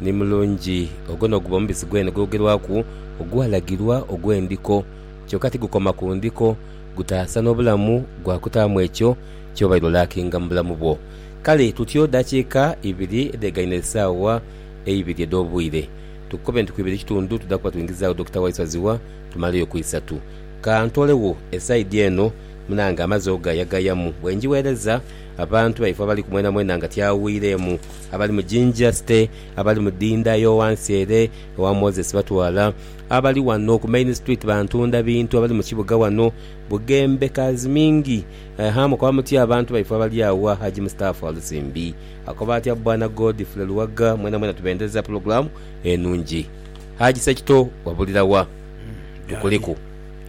ni mulungi. Ogwo n'oguba omubisi gwene ogwogerwaku ogwalagirwa ogw'endiko. Kyoka tigukoma ku ndiko, gutaasa n'obulamu gwa kutaamu ekyo ky'obaire olakinga mu bulamu bwo. Kale tutyo dakiika ibiri edhegaine esaawa eibiri edh'obwire. Tukukobe nti ku ibiri ekitundu tuda kuba twingizagho Dokita Waiswa Zziwa tumaleyo ku isatu. Ka ntoolegho esaidi eno munange amaze ogayagayamu. Bwe ngigheereza abantu baife abali ku mwenamwena nga tyawiireemu. Abali mu jinja site, abali mu dinda yo wansi ere ewa Moses batwala. Abali wano ku main street bantunda bintu abali mu kibuga wano Bugembe Kazimingi eha mukoba mutya abantu baife abali agho Haji Mustafa Walusimbi akoba atya Bwana Godfrey Luwaga mwena mwena tubendereza pulogulamu enungi Haji Sekito wabulira wa tukuliku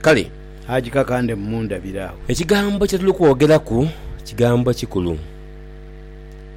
kale Haji kakande mundabire agho. Ekigambo kyetuli kwogeraku kigambo kikulu.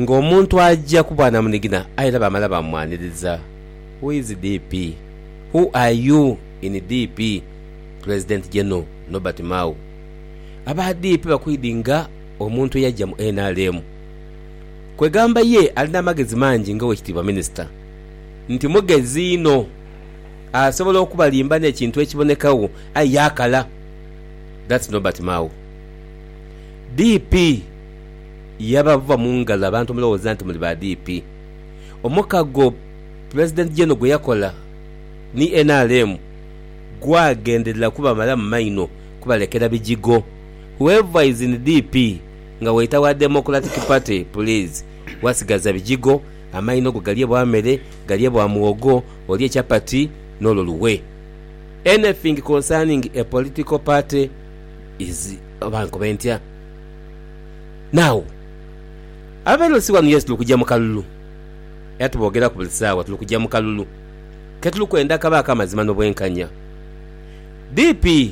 ng'omuntu aja ku bwanamunigina aye era baamala baamwaniriza. Who is DP? Who are you in DP? President General Norbert Mao, Aba DP bakwidinga omuntu eyaja mu nrm. Kwegamba ye ali n'amagezi mangi nga Oweekitiibwa Minisita nti mugezi inho, asobola okubalimba n'ekintu ekibonekagho aye yaakala. That's Norbert Mao. DP. Yabavuba mu ngalo abantu mulowooza nti muli ba DP. Omukago Pulezidenti Jeno gwe yakola ni nrm gwagenderera kubamalamu maino kubalekera bijigo. Whoever is in DP nga waita wa Democratic Party please wasigaza bijigo, amaino go galye bwa mere, galye bwa muwogo, olye chapati n'olwo luwe. Anything concerning a political party is oba nkobe ntya? Naagho ababaire bali siwanu Yesu, tuli kugya mu kalulu. Era tuboogeraku buli saawa, tuli kugya mu kalulu. Ke tuli kwenda kabe ak'amazima n'obwenkanya. DP,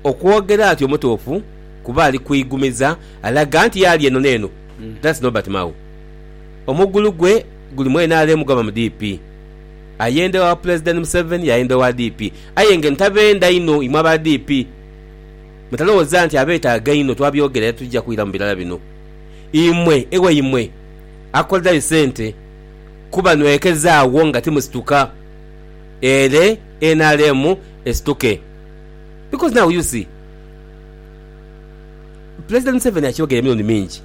Okwogera atyo mutuufu kuba ali kweigumiza alaga nti y'ali eno n'eno. That's Norbert Mao. Omugulu gwe guli mu nrm gwaba mu DP. Ayenda ewa Pulezidenti Museveni, y'ayenda owa DP. Aye nga eno tabenda inho imwe aba DP. Mutalowooza nti abeetaaga einho twabyogera era titwija kwiramu birala bino. Imwe ewaimwe akolerayo sente kuba nwekeza agho nga timusituka ere nrm esituke because now u see Pulezidenti Museveni akyogeire emirundi mingi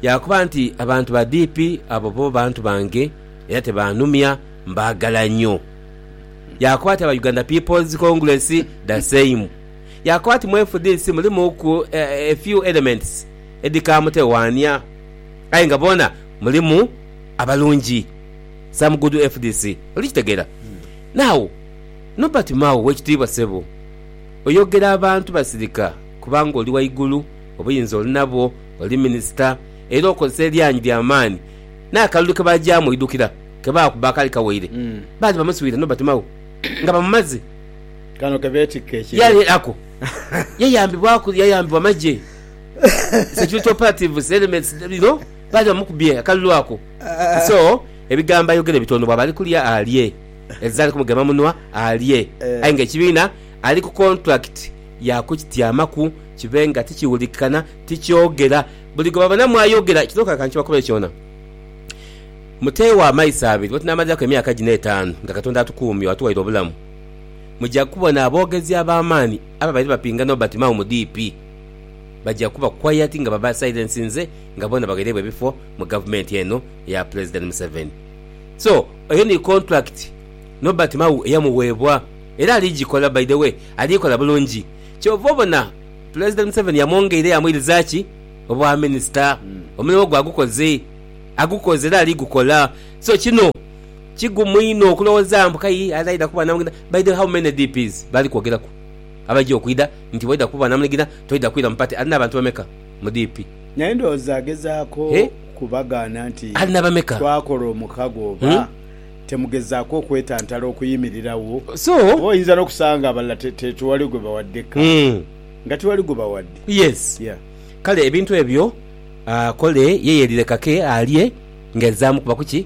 yaakoba nti abantu ba DP abo bo bantu bange era tebanumya mbaagala nyo. Yaakoba ati aba Uganda People's Congress the same. Yaakoba ati, Mu FDC mulimuku a few elements edhikaamutewaania aye nga boona mulimu abalungi. Some good FDC. Oli kitegeera? Now, Nobert Mao, w'ekitiibwa ssebo, oyogera abantu basirika kubanga oli waigulu, obuyinza oli nabwo, oli minisita, era okozesa eryanyi lya maani. N'akalulu ke baagyamu oidhukira, ke baakubba akali kawaire, baali bamuswire Nobert Mao nga bamumaze. Kano ke beetikka ekibi. Yali ako. Yayambibwaku, yayambibwa magye, security operatives, elements, you know, baali bamukubye akalulu ako. So, ebigambo ayogere bitono bwaba ali kulya alye, ezira ali ku mugema munwa alye, aye nga ekibiina ali ku contract ya kukityamaku kibe nga tikiwulikikana, tikyogera. Buli gwe babonamu ayogera, kino kale ka nkibakubire kyona. Muteewo amaiso abiri, bwe tunaamaliraku emyaka gino etaanu nga Katonda atukuumye, atuwaire obulamu, Muja kubona aboogezi ab'amaani ababaire bapinga Nobert Mao mu DP baja kuba quiet nga babasilensinze nga boona bagherebwa ebifo mu gavumenti eno eya Pulezidenti Museveni. So, eyo ni contract Nobert Mao eyamuweebwa era ali gikola by the way ali kola bulungi. Kyova obona Pulezidenti Museveni yamwongeire yamwiriza ki? Obwaminisita. Omulimu gwe agukoze. Agukoze era ali gukola. So, kino. Kigumu inho okulowoza mbu kai ali aidha kuba namunigina by the way how many DPs bali kwogeraku abaija okwidha nti waidha kuba namunigina toidha kwira mu party alina abantu bameka mu DP. Naye ndowooza agezaako kubagaana nti twakola omukago oba temugezaako okwetantala okuyimirirawo? Oba oyinza n'okusanga abalala tiwali gwe bawadde kaadi nga tiwali gwe bawadde. Yes kale ebintu ebyo akole ye yeerireka ke alye nga ezaamu kuba kuki?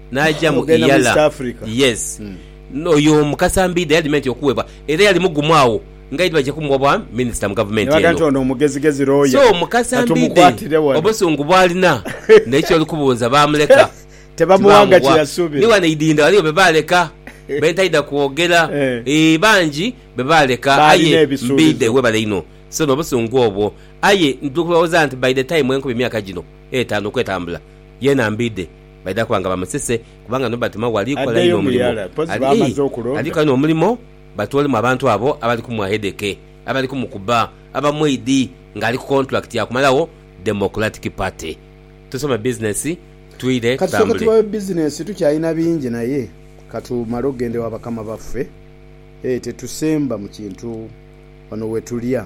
Naja mu Iyala yes oyo omu kasambidha yadima nti okuwebwa era yali mugumu agho ngaidi baja kumuwa bwa minister mu gavumenti eno so mukasambidhe obusungu bwalina naye kyoli kubuuza bamuleka tebamuwa ni wano eidhindha waliwo bebaleka bentaidha kwogera eeh bangi bebaleka aye mbidhe webale inho so no busungu obwo aye ndikulowoza nti by the time enkumi myaka gino etano okwetambula yena mbidhe Baidha kuba nga bamusise, kubanga nibabatuma ghali kola inho omulimo. Ali ali kola inho omulimo, batoolemu abantu abo abali kumwahedheke, abali kumukuba, abamweidhi nga ali ku kontulakiti ya kumalagho Democratic Party. Tusome bizinesi twire Ka tusooke tutambule. tubawe bizinesi, tukyalina bingi naye ka tumale okugenda ewa bakama baffe. Ee, tetusemba mu kintu wano we tulya.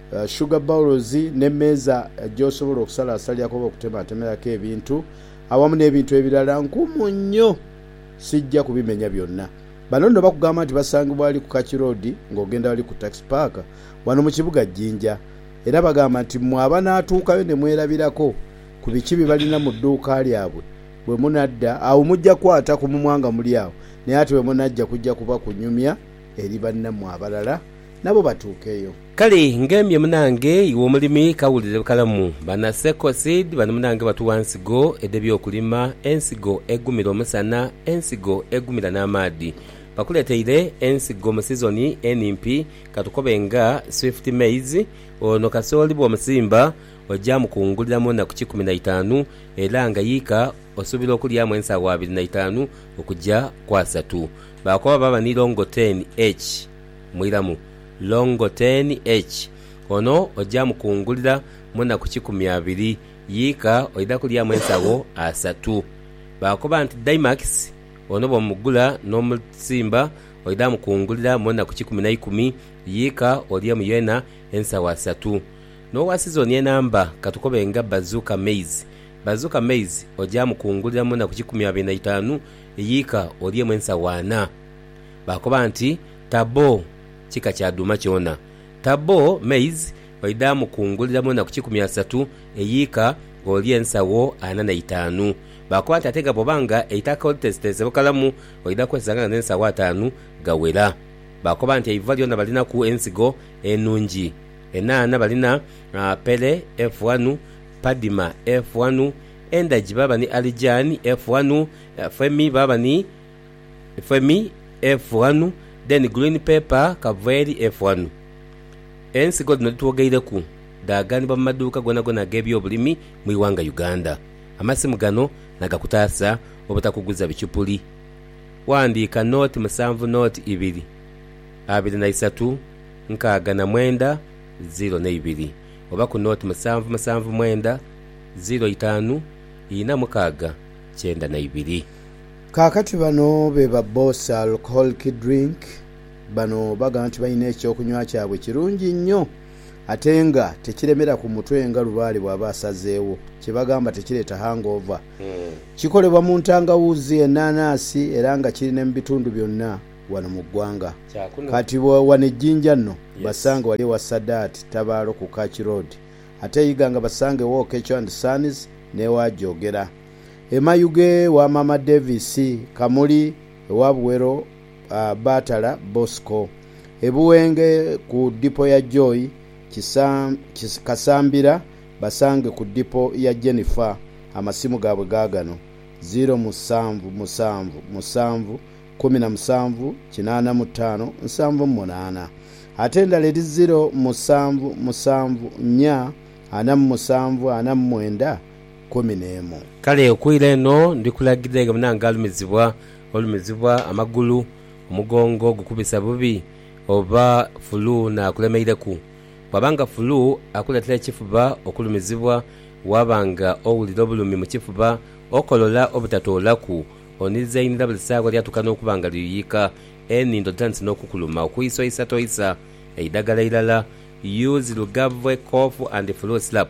Sugar bowls n'emeeza gy'osobola okusalaasaliraku oba okutemaatemeraku ebintu awamu n'ebintu ebirala nkumu nnyo sijja kubimenya byonna. Bano nno bakugamba nti basangibwa ghali ku Kach Road ng'ogenda ghali ku Tax Park wano mu kibuga Jinja era bagamba nti mmwe abanaatuukayo ne mwerabirako ku biki bye balina mu dduuka lyabwe bwe munadda agho mujja kukwata ku mumwa nga muli agho naye ate bwe munajja kujja kuba kunyumya eri bannammwe abalala nabo batuukeyo. Kale ngambye munange iwe omulimi kawulire bukalamu bana Seco Seed bano munange batuwa nsigo edhe byokulima, ensigo egumira omusana, ensigo egumira n'amaadhi. Bakuleteire ensigo mu sizoni enimpi katukobe nga Swift Maize, ono kasooli bwomusimba oja mukungulira mu naku kikumi na itaanu era nga yiika osubira okulyamu ensaawa abiri na itaanu okuja ku asatu. Bakoba baba ni longo ten H. Mwiramu Longo ten H. Ono oja mukungulira munaku kikumi abiri yika oidha kulyamu ensawo asatu. Bakoba nti Dymax ono bwomugula nomusimba oidha mukungulira munaku kikumi naikumi yika olyemu yena ensawo asatu. Nowa sizoni enamba katukobe nga Bazooka Maize. Bazooka Maize oja mukungulira munaku kikumi abiri naitanu yika olyemu ensawo ana. Baakoba nti, Tabo kika kya dhuuma kyona. Tabo, maize, baidha mukungulira mu naku kikumi asatu eyiika oli ensagho ana na itaanu. Baakoba nti, Ate nga bwoba nga eitaka olitesiteese bukalamu, oidha kwesanga nga n'ensagho ataanu ghawera. Baakoba nti, Eiva lyona balinaku ensigo enungi. Enhaana balina Pele efu ghanu, Padima efu ghanu, Endagi baaba ni Alijani efu ghanu, Femi baaba ni. Femi efu ghanu, then green pepper kava eri efu ghanu. Ensigo dhino dhitwogeireku dhaaganibwa mu maduuka gonagona ag'ebyobulimi mu ighanga Uganda. Amasimu gano nagakutaasa obutakuguza bichupuli. Ghandiika nooti musanvu nooti ibiri, abiri na isatu, nkaaga na mwenda, ziro n'eibiri oba ku nooti musanvu musanvu mwenda, ziro itaanu, ina mukaaga, kyenda n'eibiri. Kaakati bano be ba Boss Alcoholic Drink. Bano bagamba nti balina eky'okunywa kyabwe kirungi nnyo ate nga tekiremera ku mutwe nga lubaale bw'aba asazeewo, kye bagamba tekireeta hangover. Kikolebwa mu ntangawuuzi, ennaanansi era nga kiri ne mu bitundu byonna wano mu ggwanga. Kati wano e Jinja nno basange wali ewa Sadat Tabaalo ku Kach Road ate e Iganga basange ew'Oketcho and Sons n'ewa Jogera. Emayughe wa Maama Davis Kamuli ewa Buwero Baatala Bosco. E Buwenge ku dipo ya Joy Kasambira basange ku dipo ya Jennifer. Amasimu gaabwe gaagano, ziiro musanvu musanvu musanvu kumi na musanvu kinaana mu ttaano nsanvu mu munaana. Ate endala eri ziiro musanvu musanvu nnya ana mu musanvu ana mu mwenda kumi n'emu. Kale okwira eno ndi kulagidha nga munange alumizibwa olumizibwa amagulu, omugongo gukubisa bubi, oba fulu n'akulemeireku. Bw'aba nga fulu akuleetera ekifuba okulumizibwa, waaba nga owulira obulumi mu kifuba, okolola obutatoolaku, onizainira buli saagho lyatuuka n'okuba nga liyuyika, enindo dhitandise n'okukuluma okwiisa oisa toisa, eidhagala eirala, use Lugave cough and flu syrup.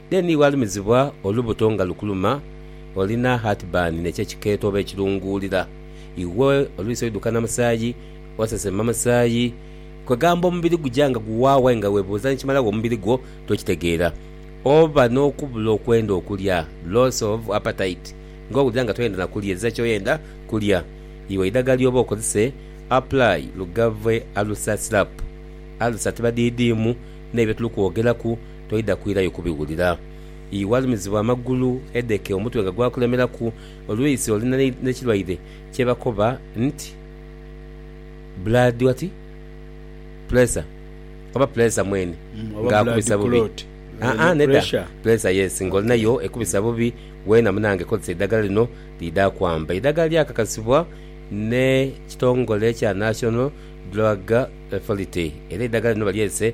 Then walumizibwa olubuto nga lukuluma, olina heartburn nekyo ekikeeto oba ekirunguulira, iwe olwisi oidhuka na musaayi, osesema musaayi, kwegamba omubiri guja nga guwaawo aye nga webuuza nikimala gha omubiri gwo tokitegeera. Oba n'okubula okwenda okulya, loss of appetite, nga owulira nga toyenda na kulya, ezira kyoyenda kulya. Iwe eidhagala ly'oba okozese, apply Lugave Alusa Syrup. Alusa tibadhiidhiimu n'ebyo tuli kwogeraku. toidha kwirayo kubiwulira. Ii Walumizibwa amagulu, hedeeke, omutwe nga gwakulemeraku, oluisi oli n'ekirwaire kyebakoba nti blood what? pressure oba puleesa mwene nga akubisa bubi? Haa nedha puleesa yes nga olina yo ekubisa bubi weena munange kozesa eidhagala lino liidha kwamba. Eidhagala lyakakasibwa n'ekitongole ekya National Drug Authority era eidhagala lino balyese.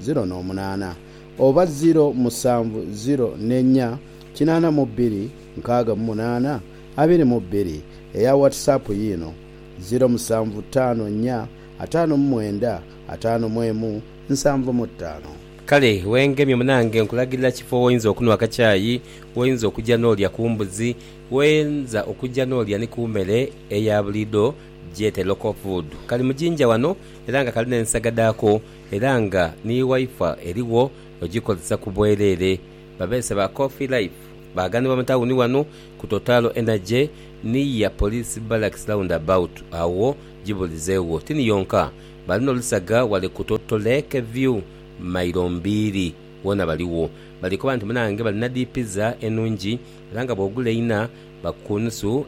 ziro n'omunaana, oba ziro musanvu ziro n'ennya kinaana mu bbiri nkaaga mu munaana abiri mu bbiri. Eya Whatsapp yiino, ziro musanvu ttaano nnya ataano mu mwenda ataano mu emu nsanvu mu ttaano. Kale wengemye munange nkulagirira kifo woyinza okunwa akakyayi, woyinza okugya n'olya ku mbuzi, woyinza okugya n'olya ni ku mere eya buliidho gyete local food. Kali mu jinja wano era nga kali n'ensaga dhaako. era nga ni Wifi erigho ogikozesa ku bwereere. Babeese ba Coffee Life baaganibwa mu tawuni wano ku Total Energy ni ya Police Barracks Roundabout agho gibulizeegho. Tini yonka, bali n'olusaga ghale ku Total Lake View mailo mbiiri. Wona baligho. Bali koba nti munange balina dhi pizza enungi era nga bw'ogula eina bakukunusu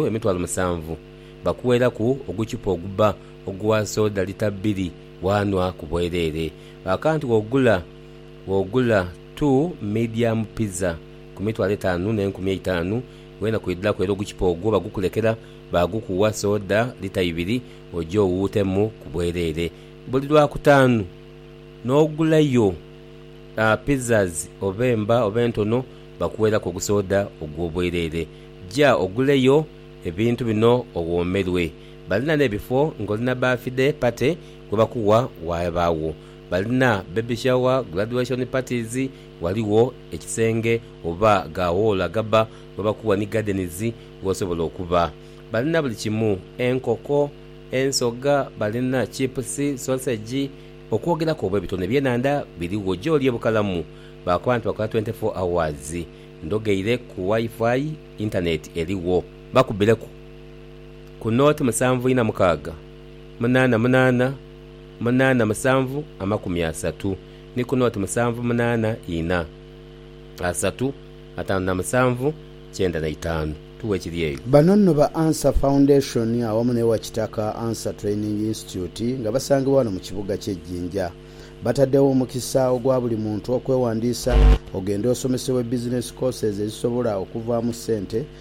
emitwalo musanvu. Bakuweeraku oguchupa ogubba Ogugha soda lita bbiri waanhwa ku bwereere. Akantu w'ogula w'ogula tu medium pizza ku mitwalo etaanu n'enkumi eitaanu, weena kwidhiraku era ogukipa ogwo bagukulekera baagukugha soda lita ibiri oje owuutemu ku bwereere. Buli Lwakutaanu n'ogulayo pizzas oba emba oba entono bakuweeraku ogusoda ogw'obwereere. Ja oguleyo ebintu bino owoomerwe. Balina n'ebifo ng'oli na baathide pate gwe bakuwa waabagho. Balina bbebi shawa, guladuweshoni patizi, ghaligho ekisenge oba ga woolo agabba ghe bakuwa ni gadenizi gh'osobola okuba. Balina buli kimu, enkoko, ensoga, balina chipusi, sosegi, okwogeraku oba ebitone ebyenhandha birigho gy'oli e Bukalamu. Baakoba nti bakola twenti fo awazi. Ndhogheire ku Wi-Fi, intaneeti erigho. Bakubbireku. ku nooti musanvu ina mukaaga, munaana munaana, munaana musanvu amakumi asatu ni ku nooti musanvu munaana ina, asatu ataanu na musanvu kyenda na itaanu. Tughe ekiri eyo. Bano nno ba Ansah Foundation awamu n'ewa Kitaka Ansah Training Institute nga basangibwa wano mu kibuga kye Jinja. Bataddewo omukisa ogwa buli muntu okwewandiisa ogende osomesebwe business courses ezisobola okuvaamu ssente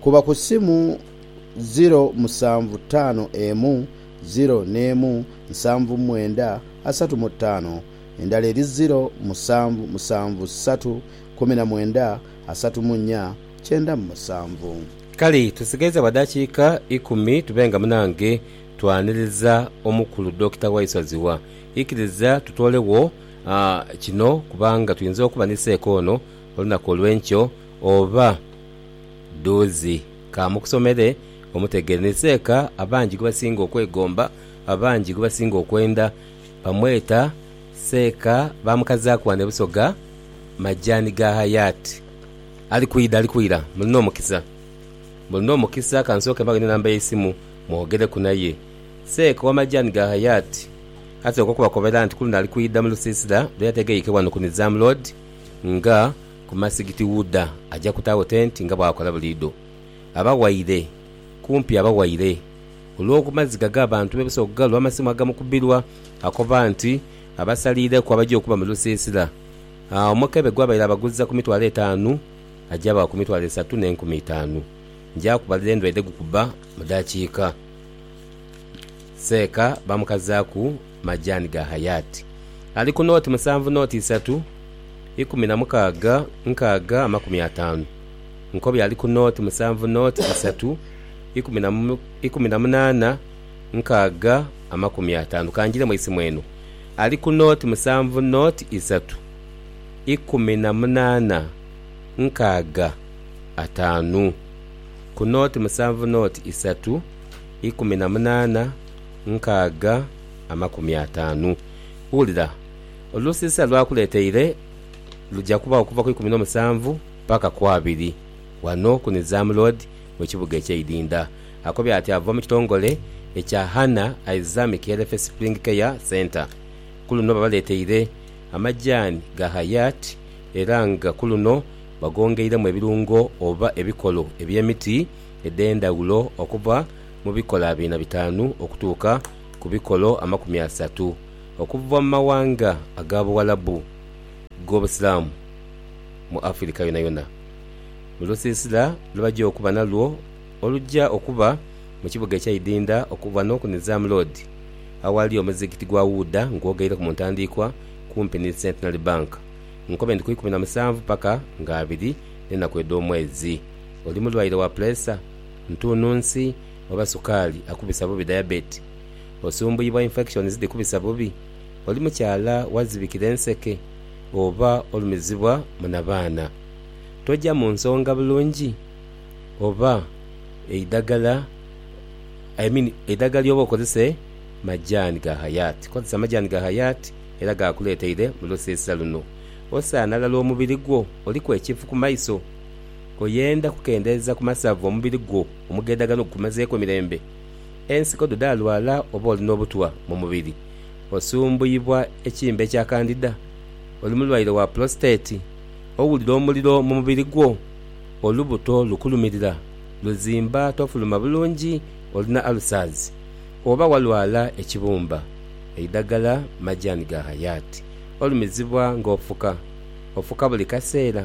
Kuba ku simu ziro musanvu taano emu ziro n'emu nsanvu mwenda asatu mu taano, endala eri ziro musanvu musanvu satu kumi na mwenda asatu mu nya kyenda mu musanvu. Kale tusigaiza bwa dakiika ikumi tube nga munange twaniriza omukulu Dokita Waiswa Zziwa. Ikiriza tutoolegho kino kubanga tuyinza okuba ni seeka ono olunaku olw'enkyo oba. Dhuuzi. Ka mukusomere omutegere. Ni Seeka abangi gwebasinga okwegomba, abangi gwebasinga okwenda. Bamweta Seeka baamukazaaku wano e Busoga, majaani ga Hayat. Ali kwidha, ali kwira. Mulina omukisa. Mulina omukisa. Ka nsooke mbaghe n'enamba y'eisimu mwogereku naye. Seeka owa majaani ga Hayat asooka okubakobera nti kuluno ali kwidha mu lusiisira lwe yategeike wano ku Nizam Road nga. Ku masigiti Wuda aja kutaagho tenti nga bw'akola buliidho. Abawaire, kumpi abawaire. Olw'okumaziga g'abantu be busobola okugalwa amasimu agamukubirwa, akoba nti abasaliireku abaja okuba mu lusiisira, omukebe gw'abaire abaguza ku mitwalo etaanu aja abawa ku mitwalo esatu n'enkumi itaanu. Nja kubalira endwaire dhe gukuba mu daakiika. Seeka baamukazaaku. majaani ga hayaati. Ali ku nooti musanvu nooti isatu ikumi na mukaaga nkaaga amakumi ataanu. Nkobi ali ku nooti musanvu nooti isatu ikumi na munaana nkaaga amakumi ataanu. Ka njire mu isimu eno. Ali ku nooti musanvu nooti isatu ikumi na munaana nkaaga ataanu. Ku nooti musanvu nooti isatu ikumi na munaana nkaaga amakumi ataanu. Wulira, olusiisira lw'akuleeteire luja kuba okuva ku ikumi n'omusanvu paka ku abiri wano ku Nizam Road mu kibuga eky'e Idinda. Akobye ati ava mu kitongole ekya Hana Isamic Healthy Spring Care Centre. Ku luno babaleeteire amajaani ga Hayat era nga ku luno bagongeiremu ebirungo oba ebikolo eby'emiti edh'endhaghulo okuva mu bikola biina bitaanu okutuuka ku bikolo amakumi asatu okuva mu mawanga aga Buwalabu g'Obusiraamu mu Afirika yonayona mu lusiisira lwe baja okuba nalwo oluja okuba mu kibuga ekya Idinda okuva n'oku Nizam Road aghali omuzigiti gwa Wuuda ng'ogaireku mu ntandiikwa kumpi ni Centenary Bank nkobe nti ku ikumi na musanvu paka nga abiri n'enaku edh'omwezi oli mulwaire wa puleesa ntuununsi oba sukaali akubisa bubi diabetes, osumbuyibwa infections dhikubisa bubi, oli mukyala wazibikira enseke oba olumizibwa mu nabaana. Toja mu nsonga bulungi oba eidagala I mean eidagala lyoba okozese majaani ga Hayat. Kozesa majaani ga Hayat era gaakuleteire mu lusiisira luno. Osaana ghala omubiri gwo oliku ekifu ku maiso. Oyenda kukendeeza ku masavu omubiri gwo omugedhagano gukumazeeku emirembe? Ensiko dho dhaalwala oba oli n'obutwa mu mubiri? Osumbuyibwa ekimbe ekya kandida? Oli mulwaire wa pulositeeti? Owulira omuliro mu mubiri gwo? Olubuto lukulumirira, luzimba tofuluma bulungi, olina alusaazi? Oba walwala ekibumba? Eidhagala majaani ga Hayati. Olumizibwa ng'ofuka? Ofuka buli kaseera?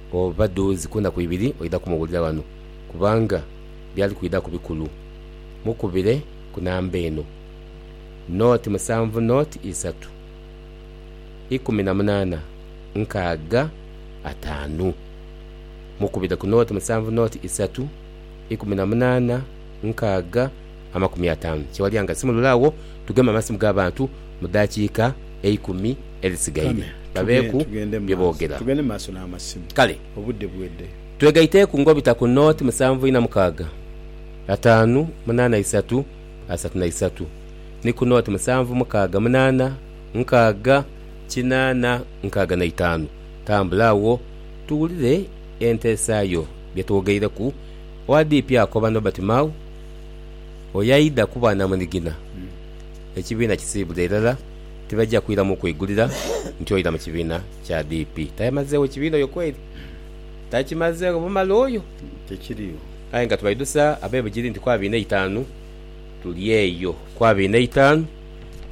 Oba dhuuzi ku naku ibiri oidha kumuwulira ghano kubanga byali kwidhaku bikulu. Mukubire ku namba eno, noti musanvu noti isatu ikumi na munaana nkaaga ataanu. Mukubire ku noti musanvu noti isatu ikumi na munaana nkaaga. amakumi ataanu kyewalya nga simulule agho tugeme amasimu ga bantu mu daakiika eikumi edhisigaire babeeku bye boogera. Kale twegaiteeku ng'obita ku nooti musanvu ina mukaaga, ataanu munaana isatu asatu na isatu ni ku nooti musanvu mukaaga munaana nkaaga kinaana nkaaga na itaanu. Tambula agho tuwulire enteesa yo. Bye twogeireku, Owa DP akoba Nobert Mao Oyo aidha kuba namunigina, ekibiina kisiibule irala, tibaija kwiramu kwigulira nti oira mu kibiina kya DP. Tayamazeegho kibiina oyo kweri? Takimazeegho bumala oyo? Aye nga tubaidusa abe Bugiri nti ku abiri n'eitaanu tuli eyo. Ku abiri n'eitaanu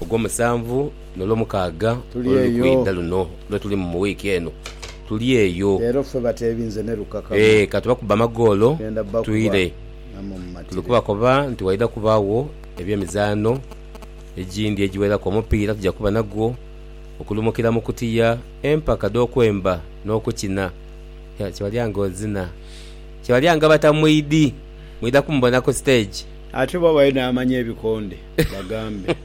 Ogwomusanvu n'Olwomukaaga oluli kwidha luno lwe tulimu mu wiiki eno, tuli eyo. Ee, ka tubakubbe amagoolo, tuire. Tuli kubakoba nti waidha kubaagho eby'emizaano egindi egiweraku omupiira tuja kuba nagwo, okulumukira mu kutiya, empaka dh'okwemba n'okukina. Kibalya ng'ozina. Kibalya nga Batamwidhi. Mwidha kumubona ku siteegi. Ate oba bayo n'amanya ebikonde bagambe.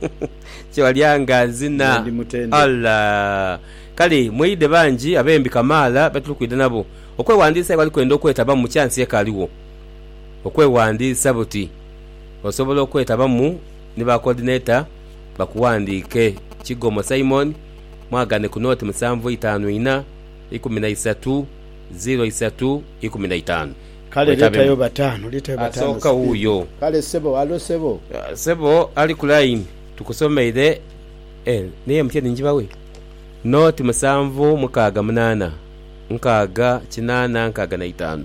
Kibalya ng'azina. Nze ndi mutendhe. Ala! Kale mwidhe bangi ab'embi kamaala be tuli kwidha nabo okwewandiisa aye abali kwenda okwetabamu, chansi ekaaligho. okweghandiisa buti osobola okwetabamu ni ba kodineta bakughandiike, Kigomo Simon, mwagane ku noti musanvu itaanu inha ikumi na isatu ziro isatu ikumi na itaanu. Kale leetayo bataanu, leetayo bataanu Asooka speed. wuuyo. Kale sebo, halo sebo. Sebo ali ku line tukusomeire eh ni MTN njibawe? Noti musanvu mukaaga munaana nkaaga kinaana nkaaga na itaanu.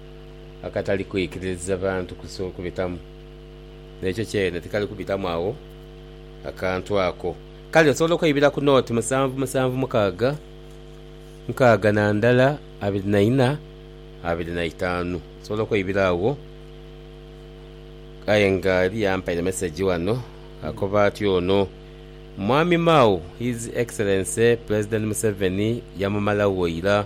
akatali kwikiririza bantu kubitamu, n'ekyo kyene tikali kubitamu agho akantu ako. Kale nsobola okweibira ku nooti musanvu musanvu mukaaga nkaaga na ndala abiri na ina abiri na itaanu. Nsobola okweibira agho. Aye nga eliyo ampaire mesegi ghano akoba ati ono Mwami Mao, His Excellency Pulezidenti Museveni yamumalagho ira.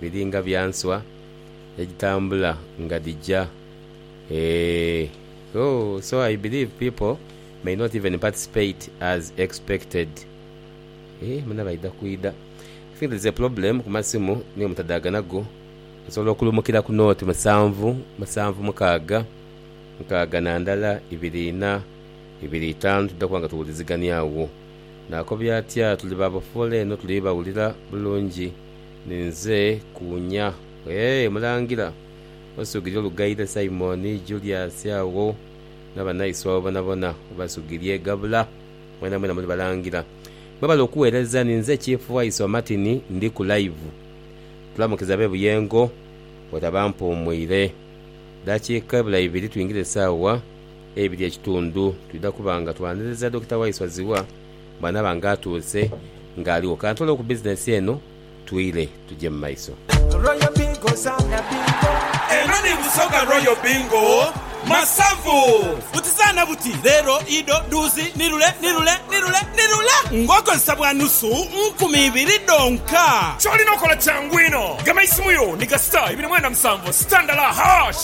Biri nga bya nswa edhitambula nga dhija eeh ooh so I believe people may not even participate as expected eeh muna baidha kwidha I think there's a problem ku masimu niyo mutadhagana go osobola okulumukira ku note musanvu musanvu mukaaga nkaaga na ndala ibiri ina ibiri itaanu twidha kuba nga tuwulizigania agho nakobya atya tuli ba bafoola eno tuli bawulira bulungi. Ninze kuwunya. Eeh Mulangira, osugirye olughaire Simon, Julius agho nabanaiswa bo bonabona obasugirye. Gabula, mwenamwena muli balangira. Mwebale okuwereza. Ninze Chief Waiswa Martin ndi ku live. Tulamukiza abe Buyengo bwetaba mpuumwire. Dakika ebula ibiri twingire saawa eibiri ekitundu twidha kuba nga twaniriza Dokita Waiswa Zziwa. Mwana bange atuuse nga aligho. Kantole ku business eno twire tuje mu maiso. Royal Bingo zaana bingo. Eno ni Busoga Royal Bingo Masavu. Buti zaana buti, leero, ido, dhuuzi, ni lule, ni lule, ni lule, ni lule ng'okozesa bwa nusu nkumi ibiri dhonka. Ky'olina okola kyangu inho. Gema eisimu yo ni gasita ibiri mwenda musanvu, sitandala, hash.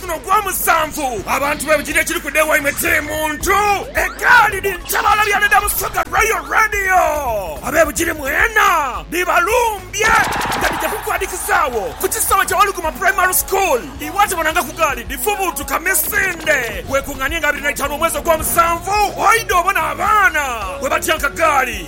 Guno gwa musanvu abantu be bugiri ekiri kuda ewaimwe tiri muntu. Egaali dhiri ntabaala bya dha Busoga Royal Radio. Abe Bugiri mwena dhibalumbye nga dhija kukwadhikizagho ku kisaawe kya Waluguma Primary School. Iwe atabona nga ku gaali dhifubuutuka misinde, weekung'anie nga abiri na itaanu omwezi ogwa musanvu oidhe obone abaana bwe batyanka gaali.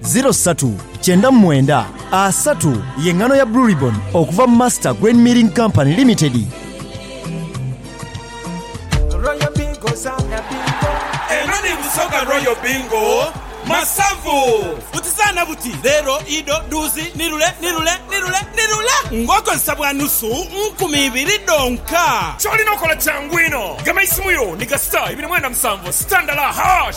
Ziro satu kyenda mu mwenda asatu ye ngano ya Blue Ribbon okuva mu Master Grain Milling Company Limited. Royal Bingo zaana bingo. Eno ni Busoga Royal Bingo Masavu. Buti zaana buti, leero, ido, duuzi, nirule, nirule, nirule, nirule ng'okozesa bwa nusu nkumi ibiri dhonka. Ky'olina okola kyangu inho, gema isimu yo ni ga star ibiri mwenda musanvu, star ndala, hash.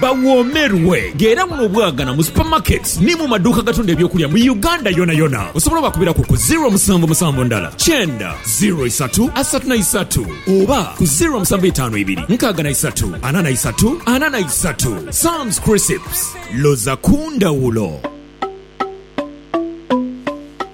Bawoomerwe nga era buno obwagana mu supermarkets ni mu maduuka agatunda eby'okulya mu Uganda yonayona. Osobola obakubiraku ku ziro musanvu musanvu ndala kyenda ziro isatu asatu na isatu oba ku ziro musanvu itaanu ibiri nkaaga na isatu ana na isatu ana na isatu. Sam's Crisps, loza ku ndhawulo!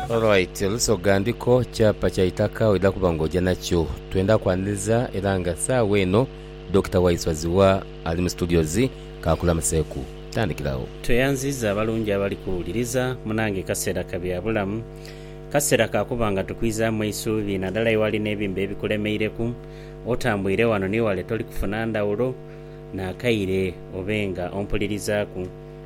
Alright Lusoga ndiko kyapa kya itaka oidha kuba nga oja nakyo. Twendha kwaniriza era nga sawa eno Dokita Waiswa Zziwa ali mu studios kakulamuseku. Tandikiragho. Tweyanziza abalungi abali kuwuliriza. Munange kasera ka bya bulamu. Kasera ka kuba nga tukwizamu eisuubi nadala ewali nebimba ebikulemeireku. Otambwire wano ni wale toli kufuna ndhawulo nakaire obe nga ompulirizaku.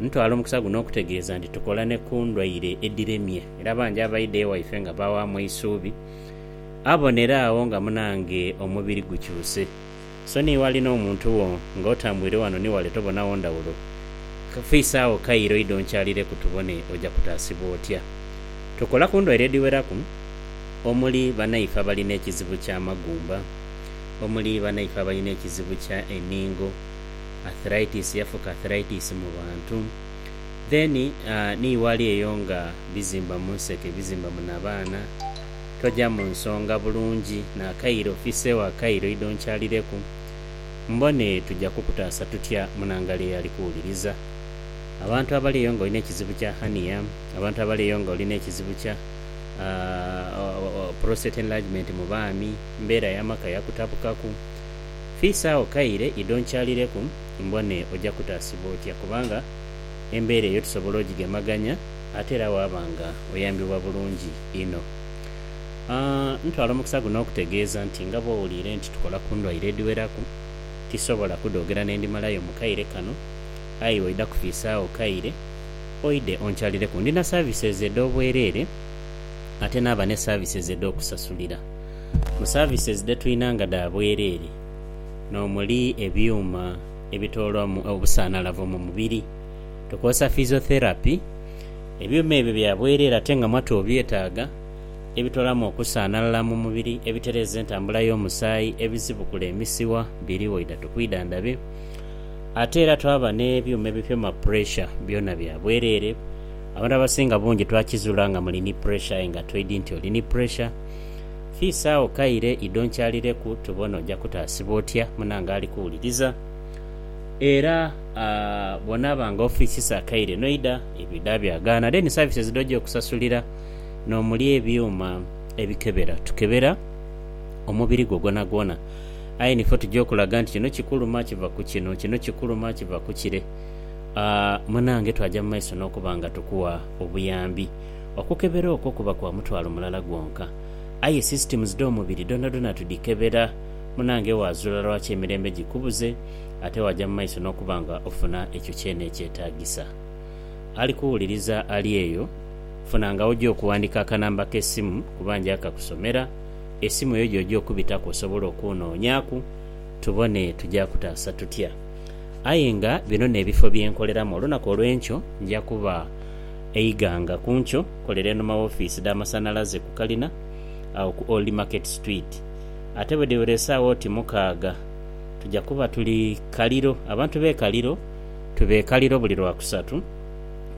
Ntwala omukisa guno okutegeeza nti tukola ni ku ndwaire edhiremye era bangi abaidha ewaife nga baawaamu eisuubi. Abonera agho nga munange omubiri gukyuse. So ni ghali n'omuntu wo nga otambwire wano ni wale tobonagho ndhawulo. Fiisaagho Cairo oidhe onkyalireku tubone oja kutaasibwa otya. Tukola ku ndwaire edhiweraku omuli banaife abali n'ekizibu ky'amagumba, omuli banaife abali n'ekizibu kya eningo, arthritis yafuka arthritis mu bantu then ni wali eyo nga bizimba munseke bizimba mu nabaana toja munsonga bulungi nakaire ofise wa kaire oidha onkyalireku mbone tuja kukutaasa tutya munangali eyo ali kuwuliriza abantu abali eyo nga olina ekizibu kya hernia abantu abali eyo nga olina ekizibu kya prostate enlargement mu baami mbera yamaka yakutabukaku. Fiisa agho kaire idho nkyalireku mbone oja kutaasibwa otya kubanga embeera eyo tusobola ogigemaganya ate era waaba nga oyambibwa bulungi inho. Aah ntwala omukisa guno okutegeeza nti nga bw'owuliire nti tukola ku ndwaire edhiweraku, tisobola kudhoogera n'endhimalayo mu kaire kano aye waidha kufiisa agho kaire oidhe onkyalireku. Ndi na services edh'obwereere ate naaba ne services edh'okusasulira. Mu services dhe twina nga dha bwerere n'omuli ebyuma ebitoolwamu obusanalavu mu mubiri, tukozesa physiotherapy. Ebyuma ebyo bya bwerere ate nga mwatu obyetaaga, ebitoolamu okusanalala mu mubiri, ebitereeza entambula y'omusaayi, ebisibukula emisiwa biriwo idha tukwidhandhabe. Ate era twaba n'ebyuma ebipima puresha byona bya bwerere. Abantu abasinga bungi twakizuula nga muli ni puresha aye nga toidhi nti oli ni puresha. Kiisi agho kaire idho nkyalireku tubone oja kutaasibwa otya munange ali kuwuliriza. Era bw'onaaba nga ofiisisa akaire n'oidha ebiidha byagaana. Then services dho oja okusasulira n'omuli ebyuma ebikebera. Tukebera omubiri gwo gwonagwona aye nife otuja okulaga nti kino kikuluma kiva ku kino, kino kikuluma kiva ku kire. Munange twaja mu maiso n'okuba nga tukuwa obuyambi. Okukebera okwo kuba kwa mutwalo mulala gwonka. Aye systems dh'omubiri dhonadhona tudhikebera. Munange waazula lwaki emirembe gikubuze ate waaja mu maiso n'okuba nga ofuna ekyo kyene ekyetaagisa. Ali kuwuliriza ali eyo, funanga w'oja okuwandiika akanamba k'esimu kuba nja kakusomera, esimu eyo gy'oja okubitaku osobole okunnoonyaaku tubone tuja kutaasa tutya. Aye nga bino n'ebifo bye nkoleramu olunaku olw'enkyo nja kuba. E Iganga ku nkyo kolera enhuma w'ofiisi dh'amasanhalaze ku kalina agho ku Old Market Street. Ate bwe dhiwera esaawa oti mukaaga tuja kuba tuli Kaliro. Abantu b'e Kaliro tuba e Kaliro buli Lwakusatu.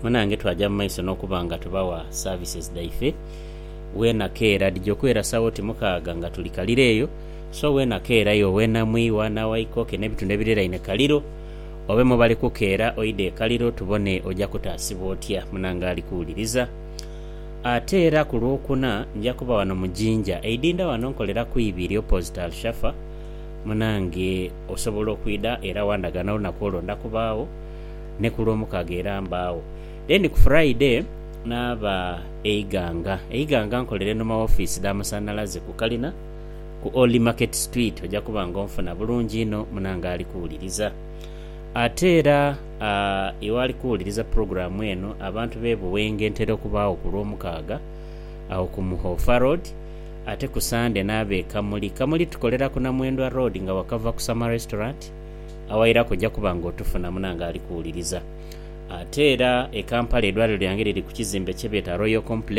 Munange twaja mu maiso n'okuba nga tubawa services dhaife weena keera. Dhija okwera saawa oti mukaaga nga tuli Kaliro eyo. So weena keera yo, weena Mwiwa, Nawaikoke n'ebitundu ebiriraine Kaliro. Obe mu bali kukeera oidhe e Kaliro tubone oja kutaasibwa otya. Munange ali kuwuliriza. Ate era ku Lwokuna nja kuba wano mu Jinja. Eidinda wano nkolera ku ibi erya opposite Alshafa. Munange osobola okwidha era wandaga n'olunaku olwo ndakubaagho. Ni ku Lwomukaaga era mbaagho. Then ku Friday naaba e Iganga. E Iganga nkolera enhuma w'ofiisi dha Masanhalaze ku kalina. ku Old Market Street oja kuba nga onfuna bulungi inho munange ali kuwuliriza. Ate era iwe ali kuwuliriza pulogulaamu eno, abantu b'e Buwenge ntera okubaagho ku Lwomukaaga agho ku Muhofa Road, ate ku Sande n'ab'e Kamuli. Kamuli tukolera ku Namwendwa Road nga wakava ku Summer Restaurant awairaku oja kuba nga otufuna munange ali kuwuliriza. Ate era e Kampala eidwaliro lyange liri ku kizimbe kye beeta Royal Complex.